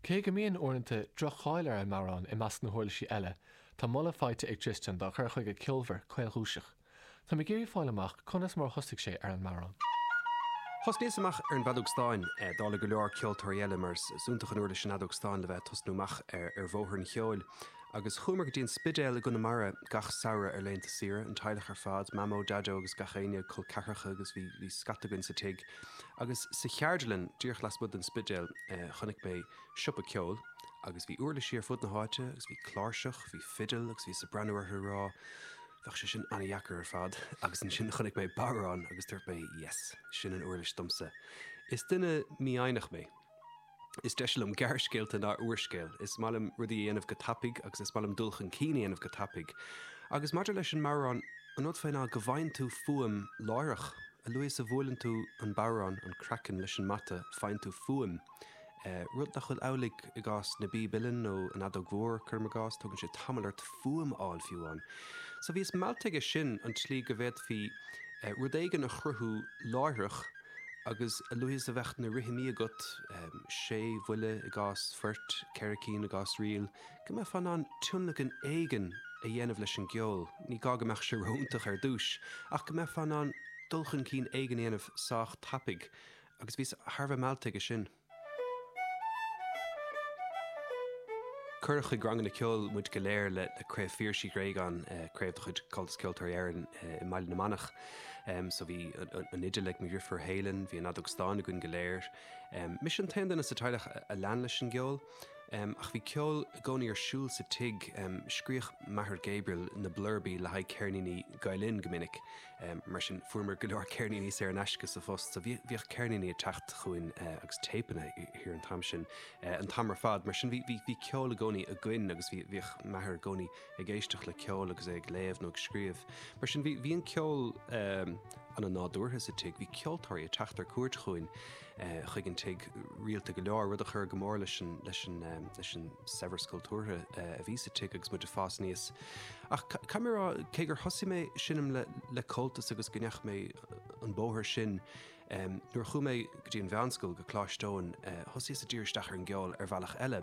Cé go mbíonn, uaireanta, droch-cháil ar an mbodhrán i measc na huirlisí eile, tá moladh faighte ag Tristan dá chur chuige ceolmhar, caolchúiseach. Táim ag iarraidh fáil amach conas mar a thosaigh sé ar an mbodhrán. Thosnaíos amach ar an bhfeadóg stáin, dála go leor ceoltóirí eile, mar is iontach an uirlis an fheadóg stáin le bheith ag tosnú amach ar bhóthar an cheoil. Agus chuamar go dtí an Spidéal i gConamara gach samhradh ar laethanta saoire, an teaghlach ar fad, Mamó, Daideo agus gach éinne, col ceathracha agus bhí scata againn sa tigh. Agus sa Cheardlann, díreach lasmuigh den Spidéal, chonaic mé siopa ceoil agus bhí uirlisí ar fud na háite agus bhí cláirseach, bhí fidil agus bhíos ag breathnú orthu ag rá Bheadh sé sin an-dheacair ar fad agus ansin chonaic mé bodhrán agus dúirt mé Yes, sin an uirlis domsa. Is duine mífhoighneach mé. Is deise liom gearrscéalta ná úrscéal. Is maith liom rudaí a dhéanamh go tapaidh agus is maith liom dul chun cinn a dhéanamh go tapaidh. Agus maidir leis an mbodhrán, an rud faoi ná go bhfaigheann tú fuaim láithreach. A luaithe is a bhuaileann tú an bodhrán, an craiceann, leis an mbata, faigheann tú fuaim, rud nach bhfuil amhlaidh i gcás na bpíob uilleann nó an fheadóg mhór, cuirim i gcás. Tógann sé tamall ort fuaim a fháil fiú amháin. So bhíos meallta aige sin, an tslí go bhféadfaí rud éigin a chruthú láithreach, Agus a luaithe is a bheadh na rithimí agat, sé bhuille i gcás phoirt, ceithre cinn i gcás ríl, go mbeifeá in ann tionlacan éigin a dhéanamh leis an gceol, ní gá go mbeadh sé ró-iontach ar dtús, ach go mbeifeá in ann dul chun cinn éigin a dhéanamh sách tapaidh. Agus bhíos thar a bheith meallta aige sin. Cuireadh chuig ranganna ceoil muid go léir le Craobh Phiarais Uí Ghréagáin, craobh de chuid Chomhaltas Ceoltóirí Éireann i mBaile na Manach. So bhí an fhidil ag mo dheirfiúr Héilean, bhí an fheadóg stáin againn go léir. Mise an t-aon duine sa teaghlach a lean leis an gceol. Ach bhí ceol i gcónaí ar siúl sa tigh. Scríobhadh m'athair Gabriel na blurbaí le haghaidh ceirníní Gael-Linn go minic. Mar sin, fuaireamar go leor ceirníní saor in aisce sa phost, so bhíodh ceirníní ag teacht chugainn agus téipeanna thiar an t-am sin. An t-am ar fad, mar sin, bhí ceol i gcónaí againn agus bhíodh m'athair i gcónaí ag éisteacht le ceol agus é ag léamh nó ag scríobh. Mar sin, bhí an ceol an-nádúrtha sa tigh. Bhí ceoltóirí ag teacht ar cuairt chugainn. chuig an tigh rialta go leor, rud a chuir go mór leis an saibhreas cultúrtha a bhí sa tigh agus muid ag fás aníos. Ach caithfidh mé a rá, cé gur thosaigh mé ag seinm le Comhaltas agus go ndeachaigh mé an bóthar sin, nuair a chuaigh mé go dtí an mheánscoil, go Coláiste Eoin, thosaíos ag díriú isteach ar an gceol ar bhealach eile,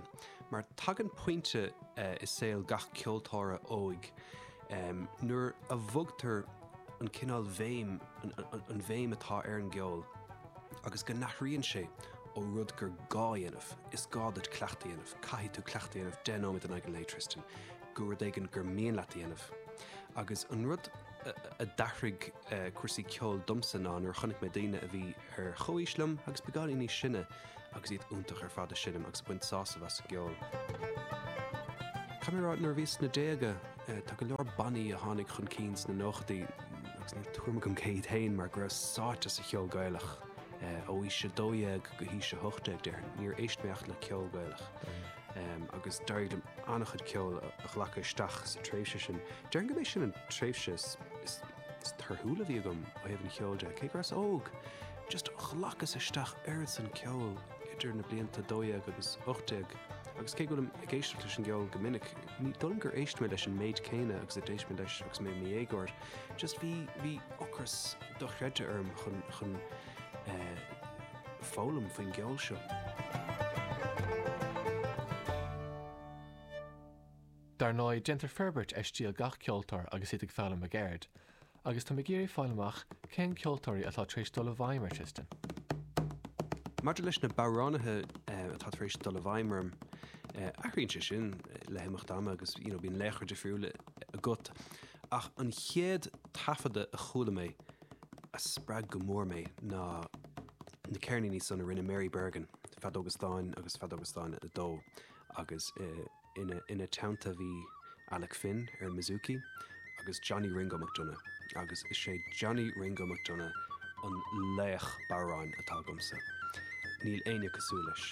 mar tagann pointe i saol gach ceoltóra óig, Nuair a bhogtar an cineál bhéim, an bhéim atá ar an gceol, agus go n-athraíonn sé ó rud gur gá a dhéanamh, is gá duit cleachtadh a dhéanamh, caithfidh tú cleachtadh a dhéanamh deich nóiméad in aghaidh an lae, Tristan, go rud éigin gur mian leat a dhéanamh. Agus an rud a d'athraigh cúrsaí ceoil domsa ná nuair a chonaic mé daoine a bhí ar chomhaois liom agus beagáinín níos sine, agus iad iontach ar fad ag seinm agus ag baint sásamh as an gceol. Caithfidh mé a rá, nuair a bhíos sna déaga, tá go leor bannaí a tháinig chun cinn sna nóchadaí agus ní raibh tuairim agam cé hiad féin mar go rabhas sáite sa cheol Gaelach ó aois 12 go haois 18, déarfainn. Níor éist mé ach le ceol Gaelach agus d'éirigh liom an-chuid ceoil a ghlacadh isteach sa tréimhse sin. Déarfainn go mb'é sin an tréimhse is. Is torthúla a bhí agam ó thaobh an cheoil de, cé go rabhas óg, just ghlacas isteach oiread san ceoil idir na blianta dó dhéag agus ocht déag agus cé go bhfuilim ag éisteacht leis an gceol go minic, ní dóigh liom gur éist mé leis an méid céanna agus a d'éist mé leis agus mé i mo dhéagóir, just bhí, bhí ocras dochreidte orm chun, chun eh, foghlaim faoin gceol seo. Dar ndóigh, déantar forbairt ar stíl gach ceoltóir agus iad ag foghlaim a gceird, agus táim ag iarraidh a fháil amach cén ceoltóirí atá tar éis dul i bhfeidhm ar Tristan. Maidir leis na bodhránaithe atá tar éis dul i bhfeidhm orm, athraíonn sé sin le himeacht ama agus bíonn laochra difriúla agat, ach an chéad taifeadadh a chuala mé a spreag go mór mé ná na ceirníní san a rinne Mary Bergin, Feadóga Stáin agus Feadóga Stáin 2 agus. Ina teannta bhí Alec Finn ar an mbouzouki agus Johnny 'Ringo' McDonagh agus is é Johnny 'Ringo' McDonagh an laoch bodhráin atá agamsa, níl éinne cosúil leis.